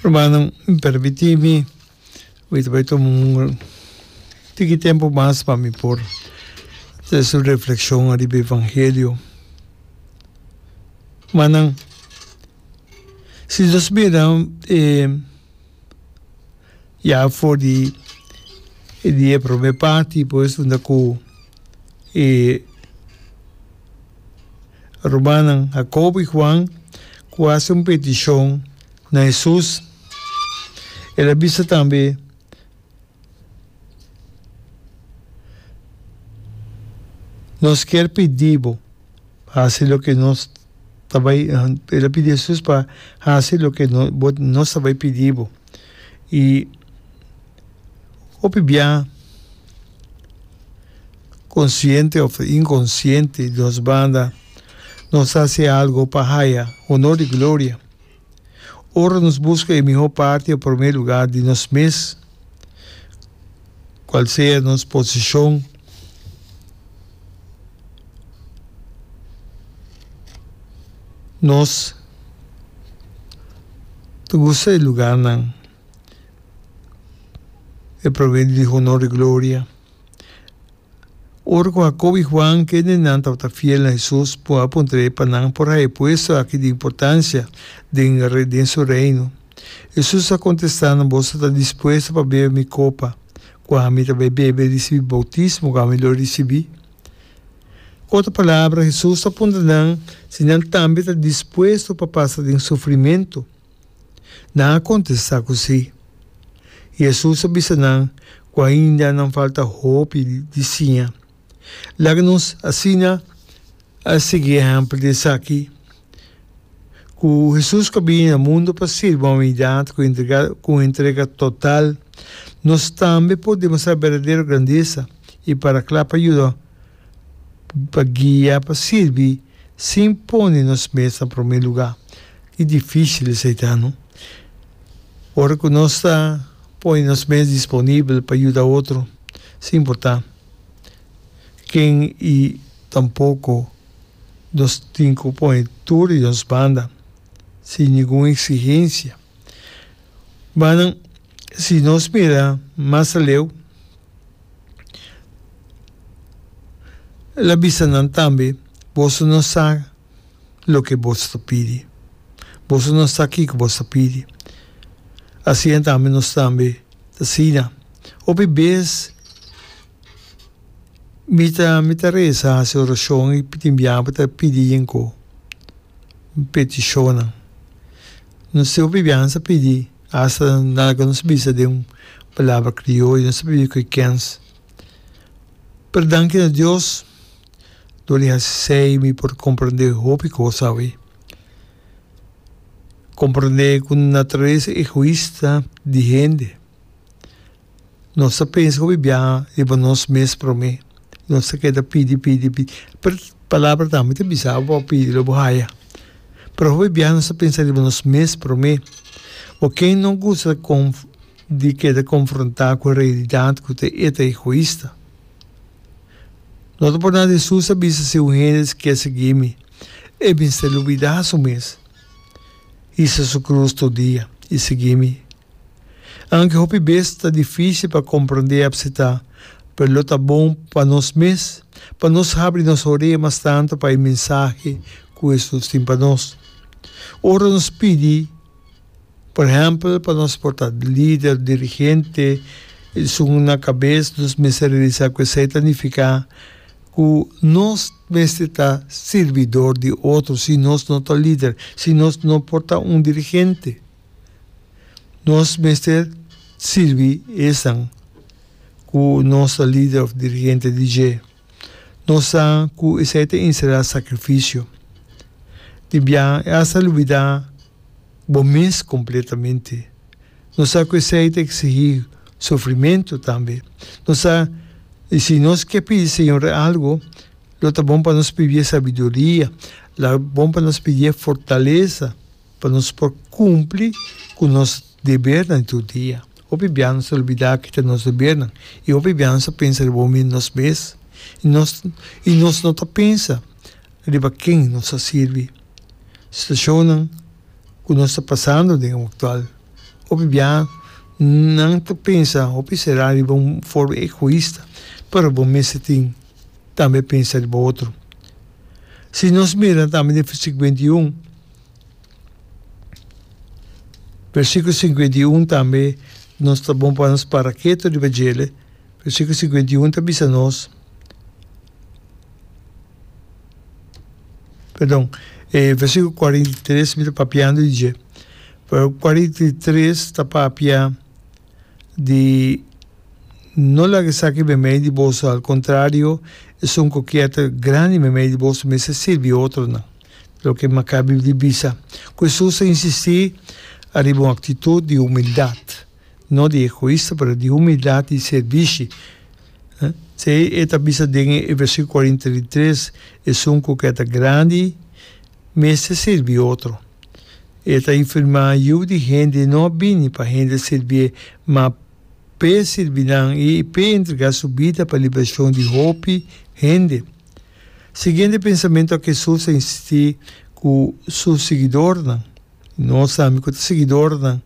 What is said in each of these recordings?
Rumannan, permiti mi mi ta bai tuma un tiki tempo mas pa mi por ta hasi un reflekshon ariba e evangelio. Rumannan, si nos mira e. ya for di di e prome parti pues unda ku e rumannan Hakob i Huan ku hasi un petishon na Hesus el a bisa tambe Nos kier pidi bo hasi loke nos ta bai el a pidi Hesus pa hasi loke nos ta bai pidi bo. I hopi bia konsiente òf inkonsiente di nos banda nos ta hasi algu pa haya honor i gloria. Ora nos buska e mihó parti o promé lugá di nos mes, kual sea nos posishon, nos ta gusta e lugánan, e promé di honor i gloria. Ora cu Jacobo y Juan, ken den nan tabata fiel na Jesus, por a puntrae pa nan por haya puesto aki di importancia den den su Reino. Jesus a contesta nan, Boso ta dispuesto pa bebe mi copa cu ami ta bay bebe ricibi bautismo cu ami lo ricibi? Cu otra palabra, Jesus ta puntra nan si nan tambe ta dispuesto pa pasa den sufrimento. Nan a kontestá ku sí. Hesus a bisa nan ku ainda nan falta hopi di siña. Laga nos asina a sigui ehèmpel di esaki, Ku Hesus ku a bini na mundu pa sirbi humanidat ku entrega ku un entrega total, nos tambe por demostrá berdadero grandesa i para kla pa yuda. pa guia, pa sirbi sin pone nos mes na prome lugá. Ki difísil esei ta, no? Ora ku nos ta pone nos mes disponibel pa yuda otro, sin importá ken i tampoko nos tin ku pone tur di nos banda sin ningun eksigensia. Banan, si nos mira mas aleu. El a bisa nan tambe, Boso no sa loke boso ta pidi. Boso no sa kiko boso ta pidi. Asina tambe nos tambe ta sina. Hopi bes mi ta mi ta resa, hasi orashon i tin biaha pa ta pidi yinko petishonnan. Nos tin hopi biaha nos a pidi. Asta nan ka nos bisa den un palabra crioyo, nos ta biba cu e kens. Pero danki na Dios, lo di haci sey mi por comprende hopi cos awe. Comprende cu naturalesa egoista di hende. Nos ta pensa ku bibia riba nos mes promé. Nos ta keda pidi, pidi, pidi. Pero Palabra tambe ta bisa bo a pidi lo bo haya. Pero hopi bia nos ta pensa riba nos mes promé. Bo ken no gusta kon di keda konfrontá ku e realidat ku ta e ta egoista? No ta por nada Hesus a bisa si un hende ta ke sigui mi, e mester lubidá su mes, hisa su krus tur dia i sigui mi. Aunke hopi bes ta difísil pa komprondé i apseptá, pero lo ta bon pa nos mes pa nos habri nos orea mas tantu pa e mensahe ku Hesus tin pa nos. Ora nos pidi, por ehèmpel, pa nos por ta lider, dirigente, esun na kabes, nos mester realisá ku esei ta nifiká ku nos mester ta sirbidor di otro si nos no ta lider, si nos no por ta un dirigente. Nos mester sirbi esnan ku nos ta lider òf dirigente di dje. Nos sa ku esei ta enserá sakrifisio. Di biaha e asta lubidá bo mes kompletamente. Nos sa ku esei ta eksigí sufrimentu tambe. Nos sa i si nos ke pidi e Señor algu, lo ta bon pa nos pidié sabiduria, lo ta bon pa nos pidié fortalesa Pa nos por kumpli ku nos debernan di tur dia. Hopi bia nos ta olbidá kita nos debernan i hopi bia nos ta pensa riba omi nos mes i nos i nos no ta pensa riba ken nos ta sirbi. Situashonnan ku nos ta pasando den e aktual. Hopi bia nan ta pensa hopi será riba un forma egoista, pero bo mester tin tambe pensa riba otro. Si nos mira tambe den versíkulo binti un. Versikulo singenta i un tambe nos ta bon pa nos para ketu riba djele, versikulo singenta i un ta bisa nos, perdon, e versikulo kuarenta i tres mi ta papiando di dje, pero kuarenta i tres ta papia di no laga esaki meimei di boso, al kontrario, esun kokièt grandi meimei di boso mester sirbi otronan. Loke Maccabi di bisa ku Hesus a insistí ariba un aktitut di humildat, no di egoista pero di humildat di sirbishi. Esei e ta bisa den e versíkulo kuarenta di tres, Esun ku ke ta grandi mester sirbi otro. E ta infirmá, Yu di hende no a bini pa hende sirbié, ma p'e sirbi nan i p'e entregá su bida pa liberashon di hopi hende. Siguiendo e pensamentu aki Hesus a insistí ku su siguidornan, i nos tambe ku ta siguidornan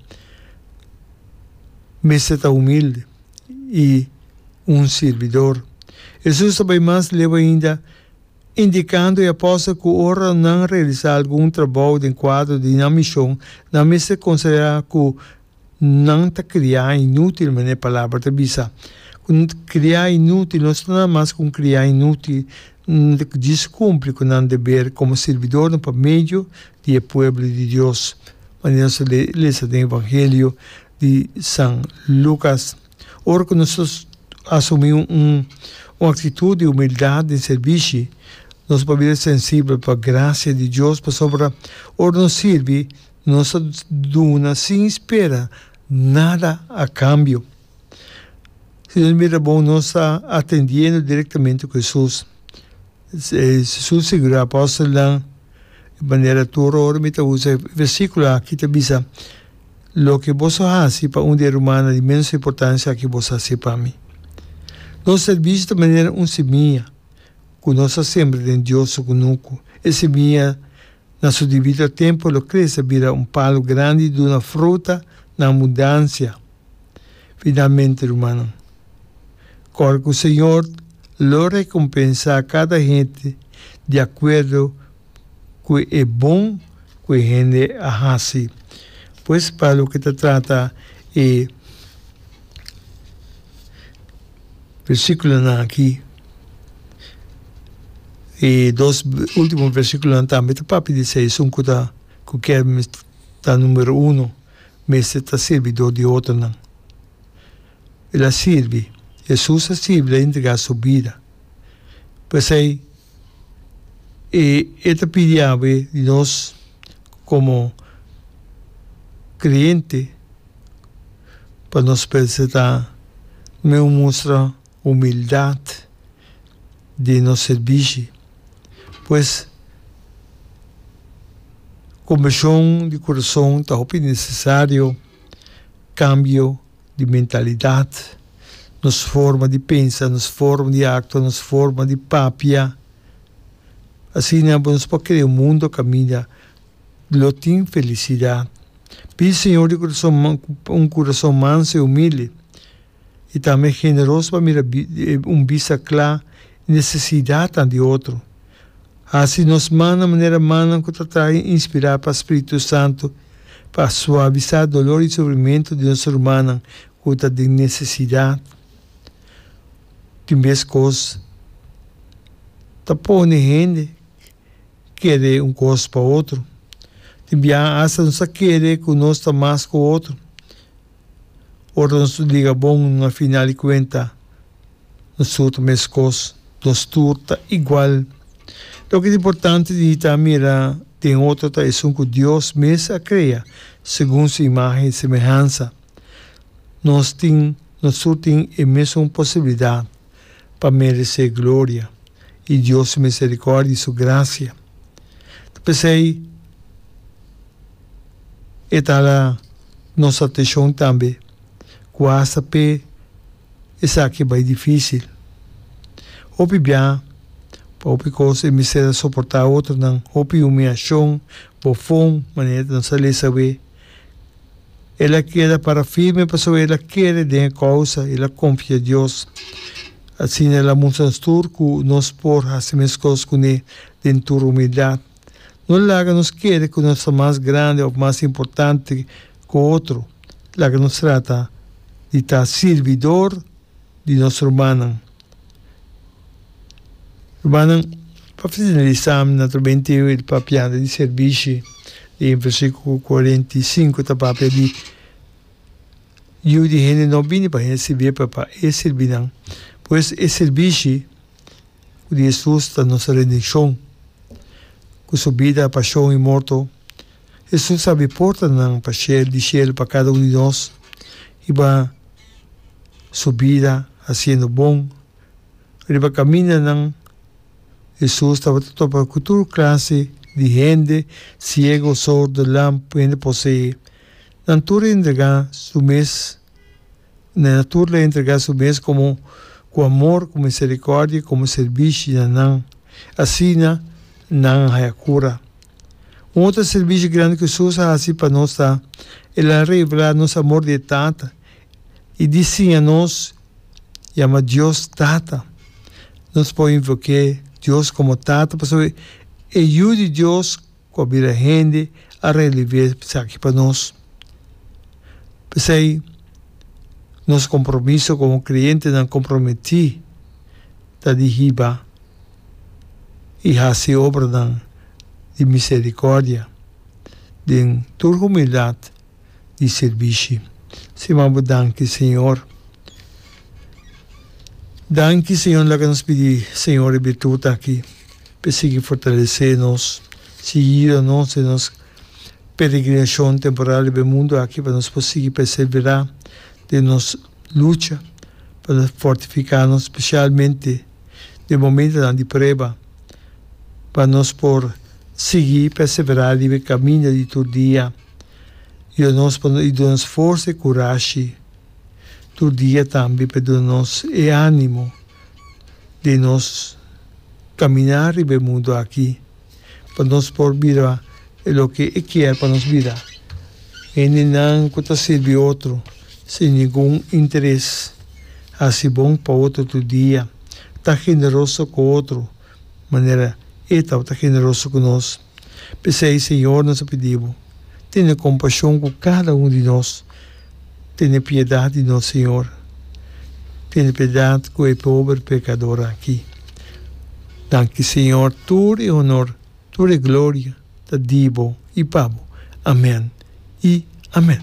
mester ta humildi i un sirbidor. Hesus ta bai mas lehu ainda, indikando e apòstel ku ora nan realisá algun trabou den kuadro di nan mishon, nan mester konsiderá ku Nan ta kria inútil, manera e palabra ta bisa. Kria inútil, nos ta nan mas ku un kria inútil. Nan ta djis kumpli ku nan deber komo sirbidornan pa medio di e pueblo di Dios, manera nos a lesa den Evangelio di San Lucas. Ora ku nos asumí un aktitut di humildat den sirbishi, nos pabia sensibel pa grasia di Dios, pasobra ora nos sirbi Nos a duna sin spera nada a kambio. Si nos mira bon, nos ta atendiendo directamente ku Hesus. Hesus sigurá apòstelnan di manera tur ora mi ta usa e versíkulo aki ta bisa, Loke bos a hasi pa un di e rumana di ménos importansia aki bos a hasi pa mi. Nos sèrbisio ta manera un simiña ku nos a sembra den Dios su kunuku. E simiña. Na su dibito tempu lo crece a bira un palu grandi i duna fruta na abundancia. Finalmente, rumannan, core cu Señor lo recompensa cada hende di acuerdo cu e bon cu e hende a haci. Pues, pa loke ta trata e. Versikulonan aki i dos ultimo versikulonan tambe ta papia di esei. Esun ku ta ku kier ta numero uno mester ta sirbidor di otronan. El a sirbi, Hesus a sirbi, el a entregá su bida. P'esei e e ta pidi awe di nos komo kreyente pa nos presentá mi un mustra humildat di nos sirbishi. Pues, konbèshon di kurason ta hopi nesesario, kambio di mentalidat, nos forma di pensa, nos forma di aktua, nos forma di papia. Asina nos por krea un mundu kaminda. lo tin felisidat. Pidi Señor di curason man cu un curason manso y humilde y tambe generoso pa mira un bista cla e necesidadnan di otro. Haci nos man na manera mannan cu ta traha inspira pa Spiritu Santo pa suavisa dolor y sufrimento di nos rumannan cu ta den necesidad. Tin bes cos ta pone hende. kere un kos pa otro. Tin biaha hasta nos a kere ku nos ta mas ku otro. Ora nos ta liga bon, na final di kuenta nos tur ta meskos, nos tur ta igual. Loke ta importante di hita a mira den otro ta esun ku Dios mes a krea segun su imagen i semehansa. Nos tin, nos tur tin e mesun posibilidat. pa meresé gloria i Dios su miserikòrdia i su grasia. Ta p'esei e ta hala nos atenshon tambe ku asta p'e esaki bai difísil. Hopi bia, pa hopi kos e mester a soportá otronan hopi humiashon, bofon, manera nan sa lesa awé. El a keda para firme pasobra el a kere den e kousa, el a konfia Dios. Asina el a mustra nos tur ku nos por hasi meskos kuné den tur humildat. No laga nos kere ku nos ta mas grandi òf mas importante ku otro. Laga nos trata di ta sirbidor di nos rumannan. Rumannan, pa finalisa mi na trobe entero e papianda di servishi di e versikulo kuarenta i sinku ta papia di Yu di hende no bini pa hende sirbié pero pa E sirbi nan. Pues e sirbishi ku di Hesus ta nos rendishon. Ku Su bida, pashon i morto, Hesus abi portanan pa shelu di shelu pa kada un di nos i baha Su bida hasiendo bon. Riba caminanan, Hesus tabata topa cu tur clase di hende, ciego, sordo, lam, cu hende posee, nan tur a entrega su mes, nan a tur la entrega su mes como cu amor, cu misericordia, como servishi na nan. Asina nan a haya cura. Un otro servishi grandi cu Hesus a haci pa nos ta, el a revela nos amor di e Tata y di siña nos, yama Dios Tata. Nos por invok'é Dios komo Tata pasobra e Yu di Dios ku a bira hende a realivé esaki pa nos. P'esei nos kompromiso komo kreentenan komprometí ta di hiba i hasi obranan di miserikòrdia den tur humildat. di sirbishi. Stima bo danki Señor. Danki Señor laga nos pidi Señor e birtut aki pa e sigui fortalesé nos, sigui yuda nos den nos peregrinacion temporal riba e mundu aki pa nos por sigui perseverá den nos lucha, pa nos fortificá nos specialmente den momentonan di prueba, pa nos por sigui perseverá riba e caminda di tur dia. Yo nos pa no i duna nos forsa i kurashi tur dia tambe pa duna nos e animo den nos kaminá riba e mundu aki pa nos por bira loke e kier pa nos bira, hendenan ku ta sirbi otro sin ningun interes, hasi bon pa otro tur dia, ta generoso ku otro manera e tabata generoso ku nos. P'esei, Señor, nos a pidi Bo, tene compashon cu cada un di nos. Tene piedad di nos, Señor. Tene piedad cu e pober pecador aki. Danki, Señor, tur e honor, tur e gloria ta di Bo y pa Bo. Amen y amen.